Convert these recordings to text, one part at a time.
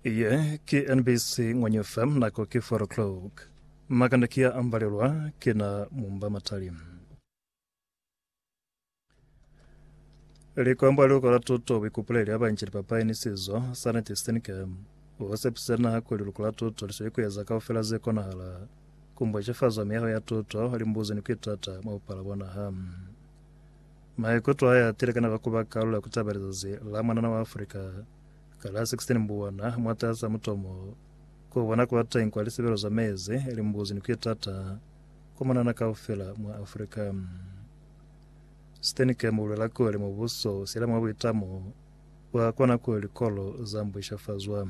Iye ki NBC Ngwanyo FM, nako ki 4 o'clock. Makanda ki ya ambalelwa ki na mumba matali. Likwambo ali ukola tuto bikupuleli abanji lipapali ni sizo sa neti sitinike. O sepise naha kuli luko la tuto li sweli kueza kaufela ze konahala. Kumbwa cefazwa miyaho ya tuto, limbuzi ni kuitata mwa bupala bwa naha. Maikuto aye a tile ka naba kuba kalulo ya ku taba lizazi la mwanana wa Afrika ka la 16 Mbuwana mwataza mutomo ku bona kwa teñi kwa lisebelo za mezi, limbuzi ni ku itata kwa mwanana kaufela mwa Afrika. Steenkamp u luela kuli mubuso u siyela mwa buitamo bwa kona kuli likolo za mbwishafazwa.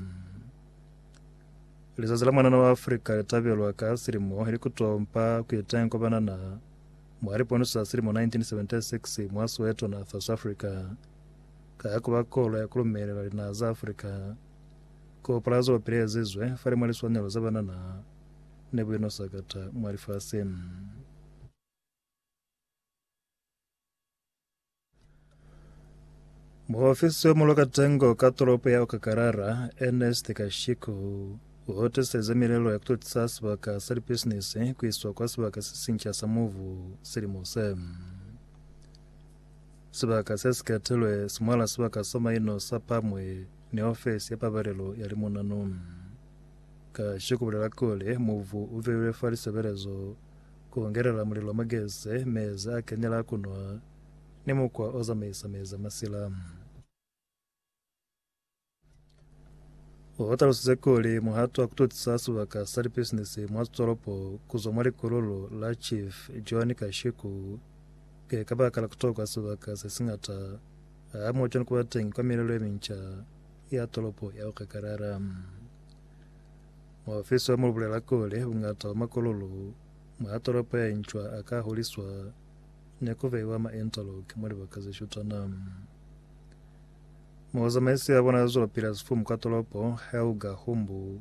Lizazi la mwanana wa Afrika li tabelwa ka silimo ili ku tompa ku iteñi kwa banana Mwa lipono za silimo 1976 mwa Soweto, Natha, Safrika, ka ya ku ba kolo ya ku lumelela linaha za Afrika, koo palazo wa pili ezizwe fale mwa liswanelo za banana ne bu ino sakata mwa lifasi. Muofisi yo mulo katengo ka toropo ya Okakarara, Ernest Kashiku, u hotiseze milelo ya kutotisa sibaka sa lipisinisi ku iswa kwa sibaka se sinca sa muvu silimo se. Sibaka se si ketilwe si mwala sibaka sa maino sa pamwe ni ofisi ya pabalelo ya limunanu. Kashiku bulela kuli muvu u veiwe fa lisebelezo Ku ngelela mulilo mwa gese, mezi a kenela ku nwa, ni mukwa o zamaisa mezi a masila. U talusize kuli muhato wa ku tutisa sibaka sa lipisinisi mwa tolopo ku zwa mwa likululu la Chief John Kashiku ki ka baka la ku tokwa sibaka se si ngata hamoho cwani ku ba teñi kwa milelo ye minca ya tolopo ya Okakarara. Muofisi wa mulubulela kuli buñata bwa makololo mwa tolopo ye ncwa a ka huliswa ni ku beiwa mwa interlock mwa libaka ze shutana. Muzamaisi wa bona za zwelopili ya sifumu kwa tolopo, Helga Humbu,